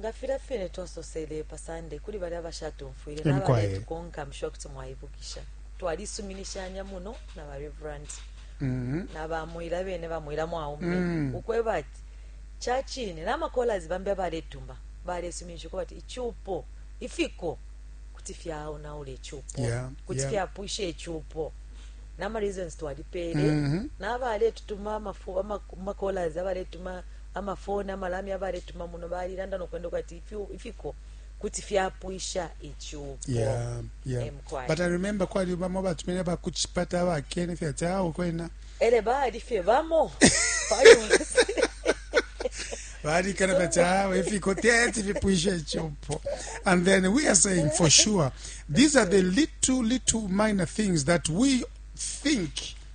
nga filya fine twasosele pa Sande kuli balya bashatumfwile na baletukonka msho kuti mwaibukisha twalisuminishanya muno na ba reverend mm-hmm. na bamwila bene bamwila mwaume mm-hmm. ukweba ati ca cine na makolas bambi abaletuma balesuminisha ukuba ati icupo ifiko kuti fyaonaula icupo kuti fyapwisha icupo nama reasons twalipele mm-hmm. nabaletutuma amakolas abaletuma Ama foni, ama lamya abaletuma muno balilanda no kwenda kwati ifiko kuti fyapwisha icupo. Yeah, yeah. But I remember kwali bamo batumene ba kuchipata ba kene fya tao kwena. Ele bali fye bamo. Bali kana fya tao ifiko tete vipwisha icupo. And then we are saying for sure these are the little little minor things that we think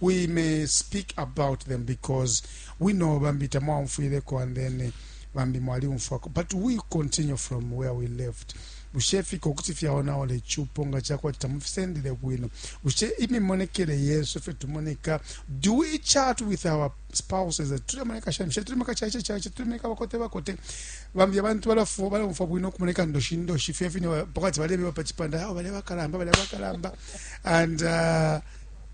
we may speak about them because we know bambi tamwaumfwileko and then bambi mwaliumfwako but we continue from where we left bushe ifika ukuti fyaonaola icupo nga cakwati tamufisendele bwino bushe imimonekele yesu ifyo tumoneka do we chat with our spouses tulemoneka shani bushe tulemeka caice caice tulemeka bakote bakote bambi abantu balafu balaumfwa bwino ukumoneka ndoshi ndoshi fye fine pakati balebeba pa cipanda ao balebakalamba balebakalamba and uh,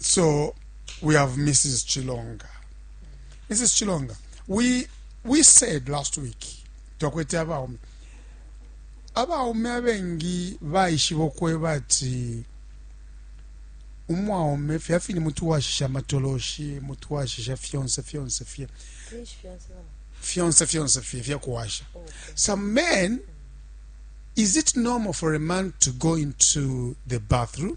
So we have Mrs. Chilonga. Mrs. Chilonga, we we said last week twakwete abaume abaume abengi baishiba okweba ati umwaume fya fini mutu washisha amatoloshi mutu washisha fyonse fyonse fye fyonse fyonse fye fyakuwasha some men is it normal for a man to go into the bathroom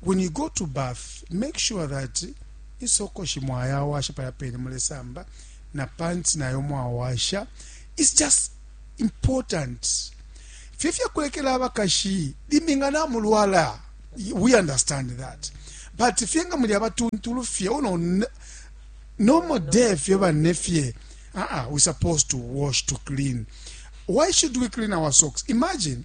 When you go to bath, make sure that insokoshi mwayawasha palya pene mulesamba na pants nayo mwawasha. It's just important. Fye fya kulekela abakashi limbi nga namulwala. We understand that. But fye nga muli abatuntulu fye uno n- normal day fye bane fye. Ah ah, we supposed to wash to clean. Why should we clean our socks? Imagine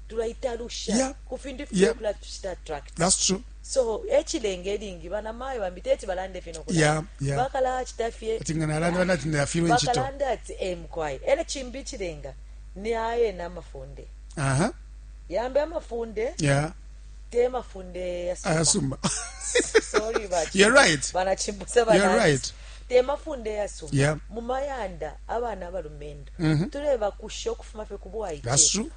tulaitalusha ku fintu ififwile ukulatucita attract so echilenge lingi bana mayo bambi teti balande fino kula yeah, yeah. bakala achita fye tinga nalande bana tinda ya filo nchito bakalanda ati eh mkwai ele chimbi chilenga ni aye na mafunde aha uh -huh. yambe mafunde yeah te mafunde ya suma asuma sorry but you're right bana chimbusa bana you're right te mafunde ya suma yeah. mumayanda abana abalumendo mm -hmm. tuleba kusho kufuma fe kubwa ite that's true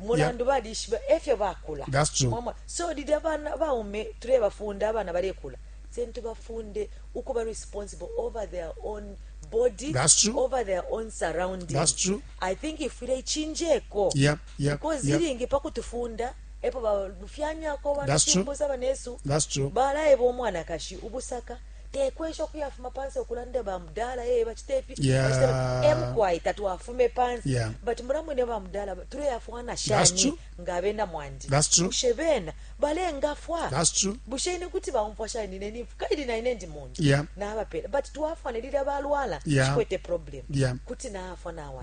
mulandu balishiba efyo bakula so lili abana baume tulebafunda abana balekula sentu bafunde ukuba responsible over their own body That's true. over their own surroundings That's true. i think ifwile ichinjeko yep, yep, because yep. ilingi pakutufunda epo balufyanyako banasumbusa banesu balayeba omwanakashi ubusaka tekwesha ukuyafuma pansi okulanda bamudala e eh, bacita ifi emkwai eh, tatwafume pansi but mulamwene bamudala tuleyafwana shani nga abena mwandi bushe bena balengafwa bushe ine kuti baumfwa shani ine nifu kaili naine ndi muntu nabapela but twafwana lilya balwala chikwete problem kuti naafwa nawa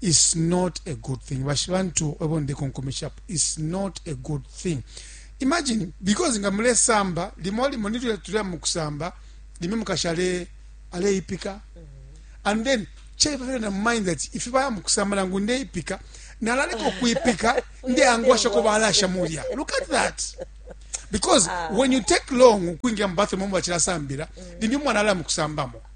It's not a good thing. Bashibantu ebo ndekonkomeshapo. It's not a good thing. Imagine, because nga mulesamba, limo limo nilyo tulya mukusamba, limo mukashale aleipika. And then, chai bafika na mind that if baya mukusamba nangu ndeipika, nalaleko kuipika, nde angwasha ko balasha mulya. Look at that. Because ah. when you take long kuingia mbathroom mwa chila sambira, limo mwana ala mukusambamo.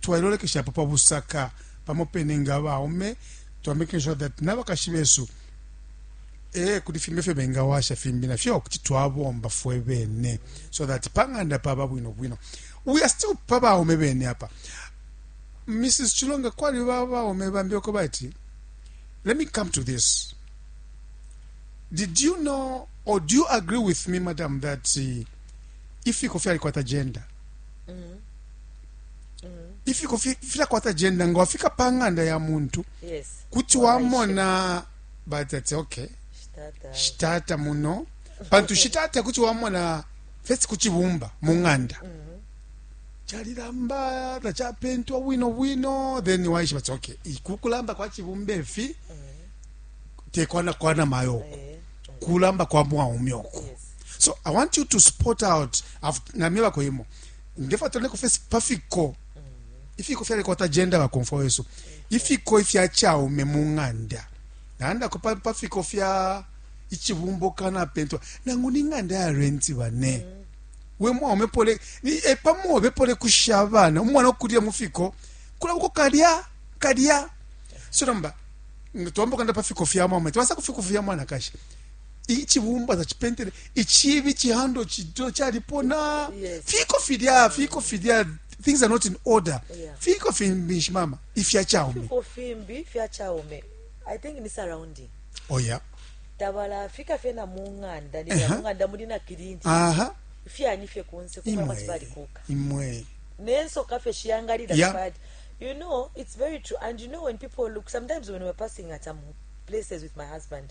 Twailolekeshapo pa busaka pamo pene nga abaume, twa making sure that nabakashi besu ee kuli fimbi efyo bengawasha fimbi nafyo kuti twabomba fwe bene so that pa ng'anda paba bwino bwino. We are still pa baume bene apa. Mrs. Chilonga kwali ba baume bambi oko bati let me come to this. Did you know or do you agree with me madam that uh, ifiko fyalikwata gender? Mm -hmm. ifiko filakwata jenda nga wafika pa ng'anda ya muntu kuti wamona batati okay shitata muno pantu shitata kuti wamona fesi ku cibumba mu ng'anda calilamba mm-hmm. tacapentwa bwino bwino then waishiba ti okay kukulamba kwa cibumba efi mm-hmm. tekwana kwana mayo oku eh, eh. kulamba kwa mwaume oku so i want you to spot out namye bakoyemo ndefuna tuloneko fesi pa fiko ifiko fyalekwata jenda bakomfwa wesu ifiko ifya chaume mu ng'anda nalandako pa, pa fiko fya ichibumbo kana pentwa nangu ni ng'anda ya renti bane we mwaume pole ni e, pamobe pole kusha abana umwana okulila mu fiko kulabuko kalya kalya so namba twambokanda pa fiko fya mwaume twasa ku fiko fya mwanakashi icibumba tacipentele icibi cihando cido calipona Yes. fiko filya fiko filya things are not in order Yeah. fiko fimbishi mama ifya chaume fiko fimbi fya chaume i think ni surrounding oya tabala fika fye na mung'anda ni Eha. mung'anda muli na kilinti aha fyani fye kunse kumwe imwe mati balikuka imwe nensoka fye shiyangalira Yeah. bad you know it's very true and you know when people look sometimes when we're passing at some places with my husband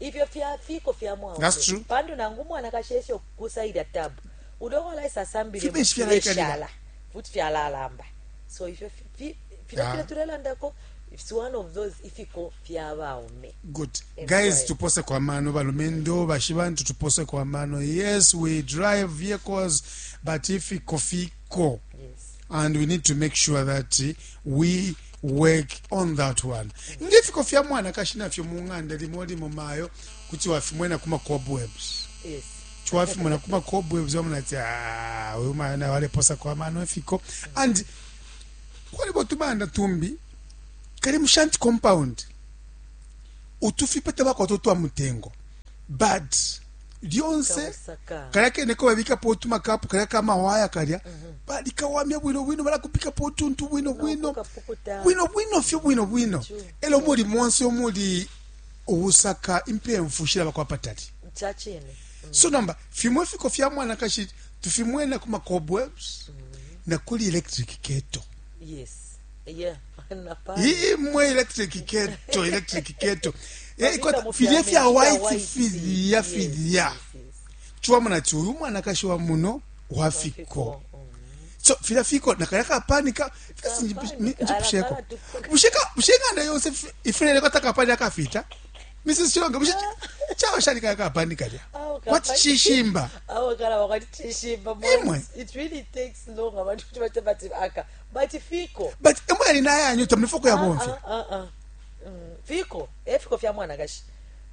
ifyo fya fiko fya mwaume pantu nangu mwanakashi esyo kukusa ilya tabu ulyo walaisa asambile fileshala futi fyalalamba so ifyo fila ah. fila tulelandako it's one of those ifiko fya baume good guys tupose kwa mano balumendo bashibantu tupose kwa mano yes we drive vehicles but ifiko fiko yes. and we need to make sure that we work on that one nge fiko fya mwanakashi nafyo mu ng'anda limo limo mayo kuti wafimwena kuma cobwebs yes twafimona kuma cobwebs wamona ati "Ah, uyu mayo naye waleposa kwa mano efiko and kwalibo tubanda tumbi kali mu shanti compound utufipa tabakwata utwa mutengo but lyonse kalya kene ko babikapo utumakapu kalya kamawaya kalya mhm. balikawamya bwino bwino balakupikapo utuntu bwino bwino bwino bwino fyo bwino bwino elo muli monse omuli ubusaka impemfu shilaba kwa patali mm. so nomba fimo ifiko fya mwanakashi tufimwena ku macobwebs mm. na kuli electric keto yes. imwe electric keto electric keto eh, filye fya white filya filya chiwamuna ati uyu mwanakashi wa muno wafiko so filya fiko nakaya kapanika njipusheko bushenganda yonse ifuleleko atakapani akafita mrs chilonga bushe chaba shali kaya kapani kalya kwati chishimba imwe bati fiko bati emo yali nayanyo tamuli foko yabomfya ah, ah, ah, mm, fiko efiko eh, fya mwanakashi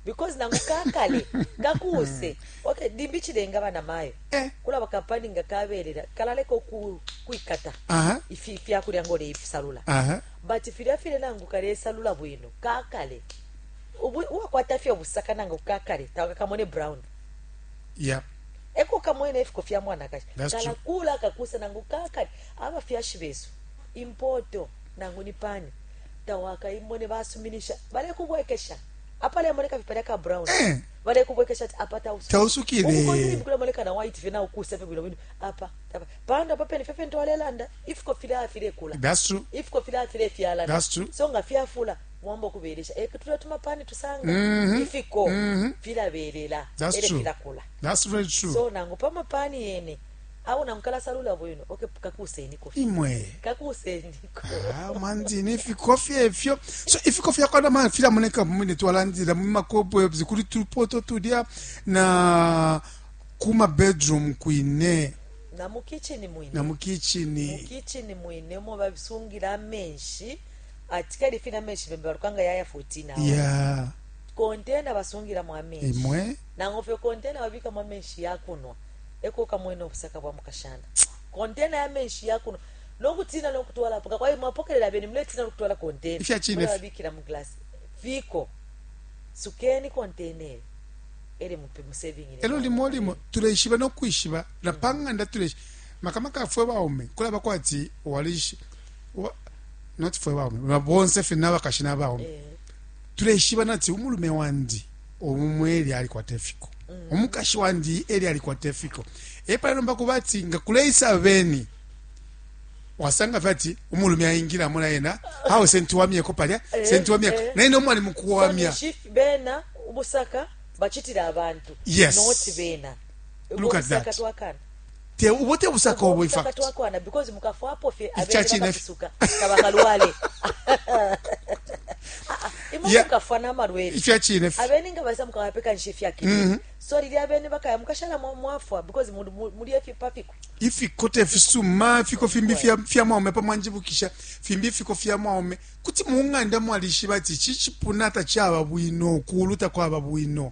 because nangu kakale kakuuse okay dimbi chilenga bana mayo eh. kula bakapani nga kabelela kalaleko ku kuikata uh -huh. ifi fya kulya ngole ifisalula uh -huh. but filya file nangu kale salula bwino kakale uwa kwata fya busaka nangu kakale tawa kamone brown yeah eko kamwene efiko fya mwana kashi kala kula kakusa nangu kakale Abafyashi besu, impoto, nangu ni pani, tawakaimone basuminisha. Balekubwekesha apalemoneka fye palya ka brown. Eh. Balekubwekesha ati apa tausukile. Tausukile. Ukukonde ni mkule moneka na white fye na ukusa fye bwino bwino. Apa, apa. Panda apa pene fye fye ntwale landa. Ifiko fila afile kula. That's true. Ifiko fila afile fya landa. That's true. So nga fya fula. Mwambo kubelesha. Eke eh, tula tuma pani tusanga. Mm -hmm. Ifiko. Mm -hmm. Fila belela. That's Ele true. Fila kula. That's very true. So nangu pama pani yene. awo na mukalasalula bwino oke kakuuseniko fye imwe kakuuseniko Ah, mwandini ifiko fye ifyo so ifiko fyakwana mwana filamoneka mumene twalandila mumakobwebs kuli tupoto tulya na kuma bedroom kwine na mu kitchini mwine na mukichini mukitchini mwine omo babisungila amenshi ati kali fina amenshi bembe balukanga yaya 14 awo ya kontena basungilamo amenshi imwe nango fye kontena babikamo amenshi yakunwa e ko ukamwena ubusaka bwa mukashana, kontena ya menshi ya kunwa, no kutiina no kutwala apo kakwai mwapokelela abeni, muletiina no kutwala kontena mulebabikila mu glasi fiko, sukeni kontena eyo elo limo limo tuleishiba no kwishiba na pa ng'anda tuleishiba makamaka fwe baume kulaba kwati walishi wa, not fwe baume bonse fye n'abakashi n'abaume eh. tuleishiba nati umulume wandi umumwe elyo alikwata ifiko umukashi wandi elyo alikwata ifiko epale nomba kuba ati nga kuleisa beni wasanga fye ati umulume aingilamo na yena awe sentiwamyeko palya eh, sentiwamyeko eh. naye nomwe ali mukuwamya bena ubusaka bachitira abantu yes. not bena look at that te ubo te busaka ubo in fact twakwana because mukafwapo fye abena bakasuka kabakalwale imukafwa n'amalwele ifya chine abene nga basa mukawapekanisha ifya kine mm -hmm. so lili abene bakaya mukashala mwafwa because muli efipa fiku ifikote fisuma fiko fimbi fya, fya mwaume pamwanjibukisha fimbi fiko fya mwaume kuti mung'anda mwalishiba ati chichipuna tachaba bwino kuulu takwaba bwino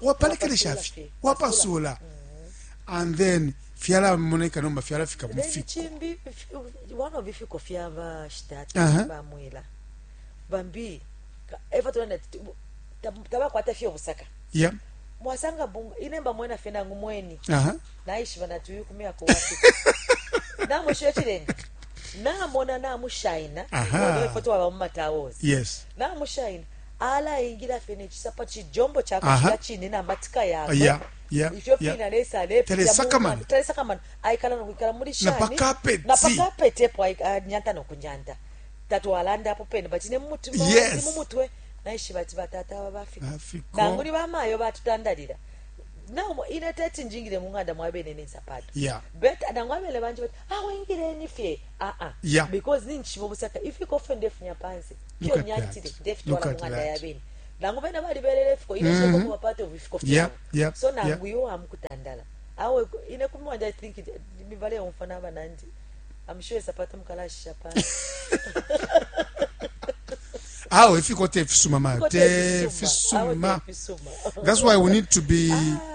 wapalekelesha fye wapasula and then fyalamoneka nomba fyalafika mufikokimbi one of ifiko fyabashitati bamwila bambi eva tona tabakwata fye obusaka yeah mwasanga bunga ine mba mwena fye nangu mweni uh-huh. naishiba nati uyu kumyaka wati namwishiba ekirenga namona namushaina uh-huh. efoto waba mumatawos yes namushaina alaingila fye nechisapa chijombo chakushila chine na matika yakwe yeah. Yeah, ifyo yeah. fina lesa alepitamana talesakamana aikala nokwikala muli shani na pakapeti epo anyanta nokunyanta tatwalanda apo pene but ne mumutima yes. mumutwe naishiba ati batata aba bafika nanguli bamayo batutandalira nao ine teti njingire mung'anda mwabene nensapato yeah. but nangu abele banje bati awengireni ah, fye aa ah, ah. yeah. because ninchiva busaka ifikofe ndefunya pansi Look at that. Look at that. nangu bena balibelele ifiko ile mm-hmm. sheko part of ifiko yeah, yeah, so nangu yeah. yo amukutandala awe ine kumwanja i think mivale yomfa naba nandi i'm sure sapata mukalashisha pa awe ifiko te fisuma ma te fisuma that's why we need to be ah.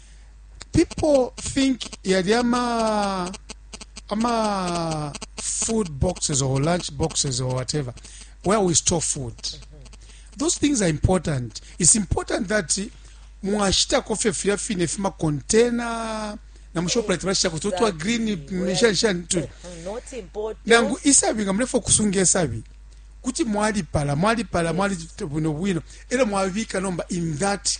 people think yali ama ama food boxes or lunch boxes or whatever where we store food those things are important it's important that mwashitako fye filya fine fimakontena na mushoprite bashitako tutwa green shanishani tuli nangu isabi nga mulefa okusunga esabi kuti mwalipala mwalipala mwali bwino bwino era mwabika nomba in that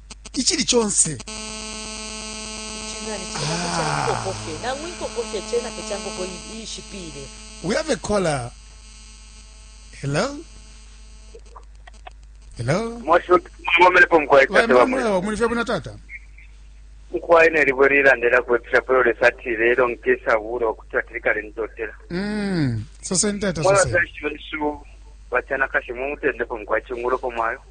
icili conse we have a caller hello hello muli fye bwino tata nkwaye nelibwe lilandela kwepesha polo lesa ati lelo nkesa bula okuti ati likale ndotela mm. soseni tata soseni mwabazashi wesu bacanakashi mumutendeko mukwaye cungulopo mwayo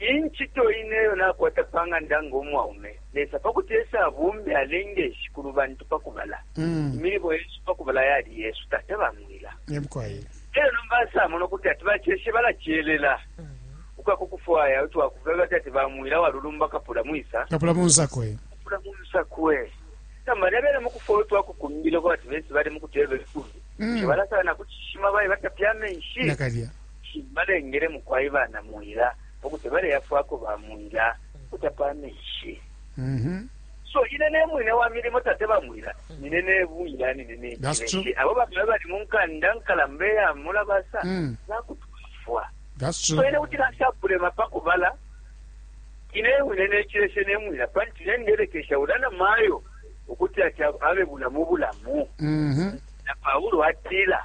Incito ine iyo nakwata pa ng'anda ngo mwaume, Lesa pa kuti ese abumbe, alenge shikulu bantu pa kubala. Imilimo yesu pa kubala yali yesu, tata ba mwila. Elyo nomba asamona ukuti ati baceshe balacelela ukuya ku kufwaya utwakufuba bati ati ba mwila walulumba kapula mwisa. Kapula munsakwe. Kapula munsakwe. Nomba nebele mu kufwaya utwakukumbila kwa ati bese bali mu kutwebela ikulu. Balasala na ku cishima baye batapya amenshi. Nakalya. Shi balengele mukwai banaMwila ukuti baleyafwako baMwila ukutapa amenshi. So ine ne mwine wa milimo, tate baMwila, nine ne Mwila, nine ne That's true. Nkileshi. Abo bambi abali mu nkanda nkalamba iya Mulabasa Mm. bakutwafwa. That's So true. ine kuti nashakulema pa kubala ine wine nekileshe nemwila panti nenderekesha ula na mayo ukuti ati abe bulamu bulamu Mhm. na paulo atila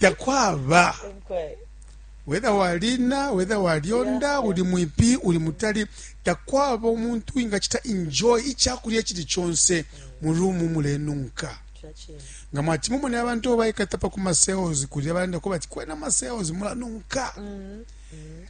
takwaba whether walina whether walyonda uli mwipi uli mutali takwaba omuntu ingachita enjoy ichakulya chili chonse mu room mulenunka nga mwati mumone abantu obaikata pa kuma sales kulya balanda ko bati kwena ma sales mulanunka mm-hmm.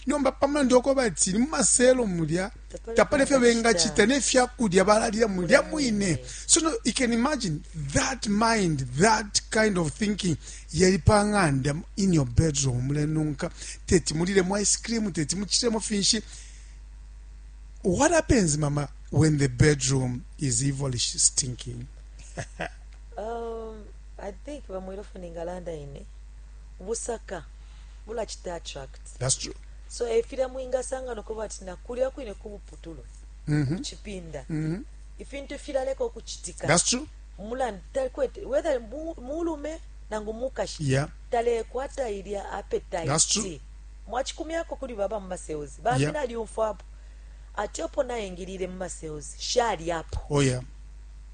nomba pamulandu oko bati ni mu maselo mulya tapali ifyo bengacita ne fya kulya balalila mulya mwine so no, you can imagine that mind that kind of thinking yali pa ng'anda in your bedroom mulenunka teti mulilemo ice cream teti mucitemo finshi what happens mama when the bedroom is evilish stinking um, i think bamwile funa engalanda ine busaka mulacita attract That's true. so efilya mwingasanga nokuba ati nakulya kwine kubuputulu mm -hmm. kuchipinda mm -hmm. ifintu filaleka ukuchitika That's true. mulandu takwete whether mulume nangu mukashi yeah. talekwata ilya appetite mwachikumyako kuli baba mu masales bambi yeah. nalyumfwapo ati opo nayingilile mu masales shali apo oh, yeah.